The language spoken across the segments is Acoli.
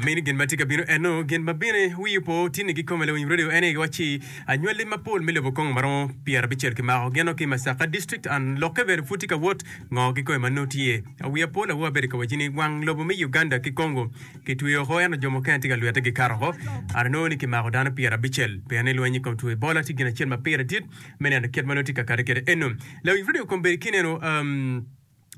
Mini gin ma tye ka bino eno, gin ma bine wiyi opo tinni ki kome lawiny radio ene giwacci anywali mapol me lobo kongo maromo pyera bicel kimako geno ki Masaka district and lokke bene pud tye ka wot ngo ki kome ma nongo tye awiya pol awoa abedo ka wacci ni wang lobo me Uganda ki kongo ki tweyo oko ento jo mukene tye ka lwete gi kato oko and nongo ni kimako dano pyera bicel pien ni lweny ikom two Ebola tye gin acel ma pire dit me neno kit ma nongo tye ka kati kede eno lawiny radio kombedi kineno um,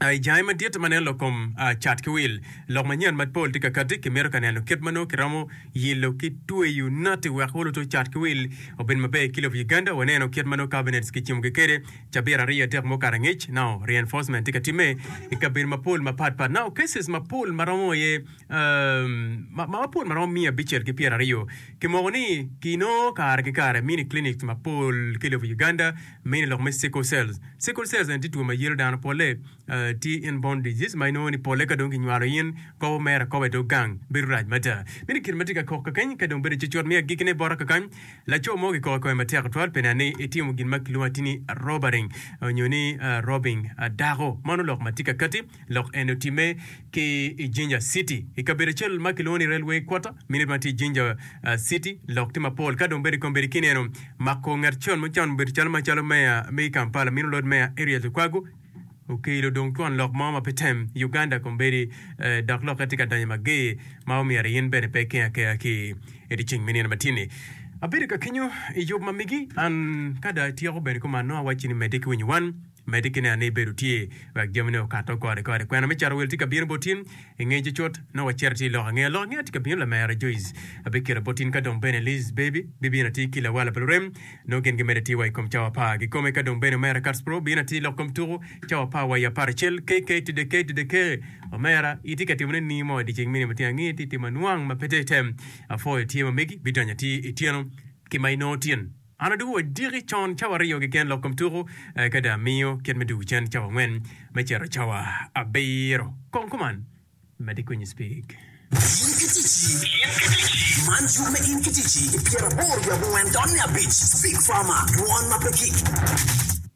I jami madit ma nen lok kom cat ki wil, lok manyen ma pol tye ka kati, kimito ka neno kit ma nongo kiromo yilo ki tweyo nati wek wuluto cat ki wil obed maber ki lobo Uganda. Waneno kit ma nongo cabinets kicimogi kwede cabit aryo adek mo kare angec. Nao reinforcement tye ka timme i kabedo mapol mapat pat. Nao cases mapol ma romo aye mapol ma romo miya abicel ki pyeraryo kimoko ni kinongo kare ki kare mini clinics mapol ki lobo Uganda. mine lok me sickle cells. Sickle cells eni tye two ma yelo dano, pole tye in born disease ma inongo ni pole ka dong ki nywalo in kobo mere akoba idog gang bedo rac mada. Mine kit ma tye ka kok kakeny ka dong bedo cutcut me agikki ne bota kakany laco mo ki koko kome matek tutwal pi neno ni itimo gin ma kilwongo ati ni robering onyo ni robbing dako. Mano lok ma tye kakati. Lok eni otimme ki i Jinja City, i kabedo acel ma kilwongo ni Railway Quarter, minit ma tye i Jinja City. Lok tye mapol ka dong bene i kombeddi ki nino mako ngat con ma con obedo calo macalo meya me i Kampala, Minu Lord Mayor Erias Lukwago okelo dong twon lok mo ma pe tem i Uganda kombeddi dok lokke tye ka donyo mager ma omyero in bene pe iker akera ki i dye ceng me nino ma tye ni. Abedo ka kenyo i yub ma migi an ka dong atyeko bene kuman nongo awacci ni medde ki winyo wan. Medi ki neno ni ibedo tye wek jamine okato kore kore. Kwena me cato wel tye ka bino bot in i ngec cut. Nongo wacito atir lok angeya. Lok angeya tye ka bino. Lamera Joyce abikito bot in ka dong bene Liz Baby bibino atir ki lawala pa lurem. Nongo gin gimedo atir wa i kom cawa apar kikome ka dong bene omera Katspro bino atir lok kom tuku cawa apar wa i apar acel KK Tide K Tide K Omera itye ka timone ni mo idyeceng mini matino ange ti timo anwang ma pe te tem. Apwoyo tye ma megi bidonyo atir ityeno ki ma inongo tin. An adwogo wadiki con cawa aryo keken lok kom tuku, eka dong amiyo kit me dwogo cen cawa angwen me cito cawa abiro. Kong kuman. Mad ikuny speak. In ki ticci. Man cuk me In ki Ticci i pyeraboro wiye abongwen dot me abic. Speak Farmer, dwon ma pe kik.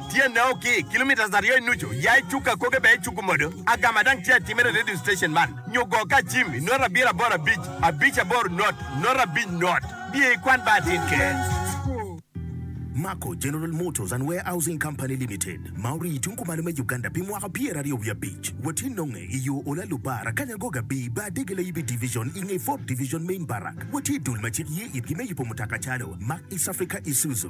Tyene o ki kilometres aryo i nucu, ya i cuk akoge bene icuku modo agama dang tye atimere i radio station man nyo go ka acim i nota abiro aboro abic abic aboro not nota abic not biye i kwan bar atin keken. Mako General Motors and Warehousing Company Limited ma orii i tung kumalo me Uganda pi mwaka pyeraryo wiye abic. Watye nonge i yo Olalu Bar, Akanya Agog Abi, Bar Dege Layibi Division i nge Ford Division Main Barrack. Watye i dul ma cik ye itgi me yubo mutoka calo Mack, East Africa, Isuzu.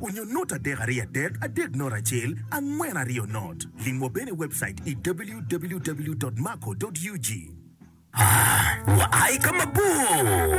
Onyo not adek aryo adek adek not acel angwen aryo not. Lim wa bene i webcait i www.maco.ug. Aa, Wua aye ka mabor.